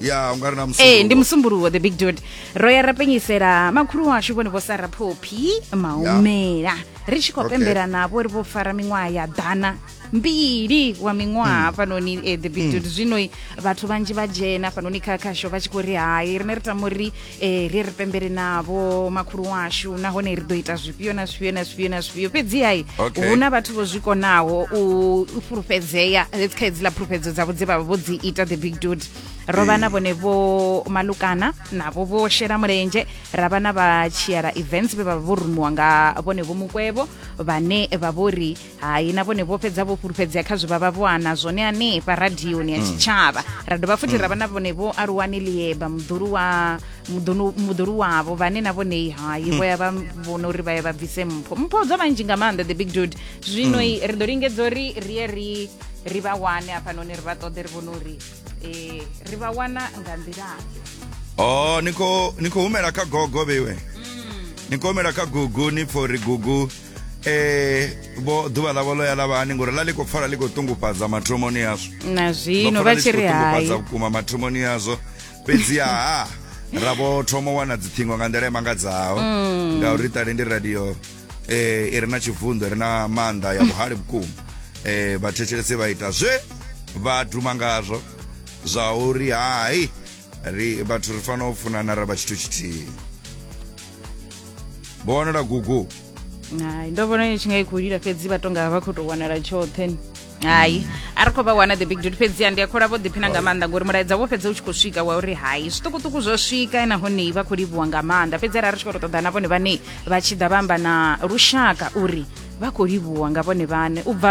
ya u nga ri na ee ndi musumbuluwo the big dude ro ya ra penyisela makhulu washu vhone vho sara phophi maumela ri tshi khou Okay. pembela navho ri vho fara miṅwaha ya ḓana mbili wa miṅwaha hafhanoni eh, the big dude zwino vhathu vhanzhi vha dzhena hafhanoni kha khasho vha tshi khou ri hai rine ri tama uri e, ri ri pembele navho makhulu washu nahone ri ḓo ita zwifhio na zwifhio na zwifhio na zwifhio fhedzihai okay. hu na vhathu vho zwi konaho u fhulufhedzea let's kha hedziḽa fhulufhedzo dzavho dze vhavha vho dzi ita the big dude ro vha na vhone vho malukana navho vho shela mulenzhe ra vha na vha tshiela events vhe vha vha vho rumiwa nga vhone vho mukwevho vhane vha vho ri hai na vhone vho fhedza vho fhulufhedzea kha zwe vha vha vho ana zwone hanefha radioni ya mm. tshitshavha ra dovha futhi ra vha na vhone vho aluwani lieba muḓulu wa muḓulu wavho vhane na vhonei hai mm. vho ya vha vhona uri vha ye vha bvise mpho mpho dza vhanzhi nga maanḓa the big dude zwino mm. ri ḓo lingedza uri ri ye ri ri vha wane hafhanoni ri vha ṱoḓe ri vhone uri um ri vha wana nga nḓilaḓe o oh, ni khou humela kha gogo vheiwe ni khou humela kha gugu ni pfo uri gugu eh vho ḓuvha ḽavho ḽo ya ḽa vha hani ngori ḽa ḽi khou pfala ḽi khou ṱungufhadza mathomoni yazwo na zwino vha tshi ri hai vhukuma mathomoni yazwo fhedzi ha ra vho thoma wana dziṱhingo nga nḓila imangadzaho mm. ngauri ṱale ndi radio eh i re na tshivunḓo ri na maanḓa ya vhuhali vhukuma eh vhathetshelesi vha ita zwe vha duma ngazwo zwa uri hai ri vhathu ri fanela u funana ra vha tshithu tshithihi vho wanala gugu hai ndo vhona i tshi nga i khou lila fhedzi vha tonga vha khou tou wanala tshoṱhe hai a ri khou vha wana the big dude fhedziha ndi a khola vho ḓiphina nga maanḓa ngori mulaedza wo fhedza u tshi khou swika wa uri hai zwiṱukuṱuku zwo swika nahone vha khou livhuwa nga maanḓa fhedzi arali ri tshi khou tou ṱoḓa na vhone vhane vha tshi ḓa vha amba na lushaka uri vha khou livhuwa nga vhone vhane u bva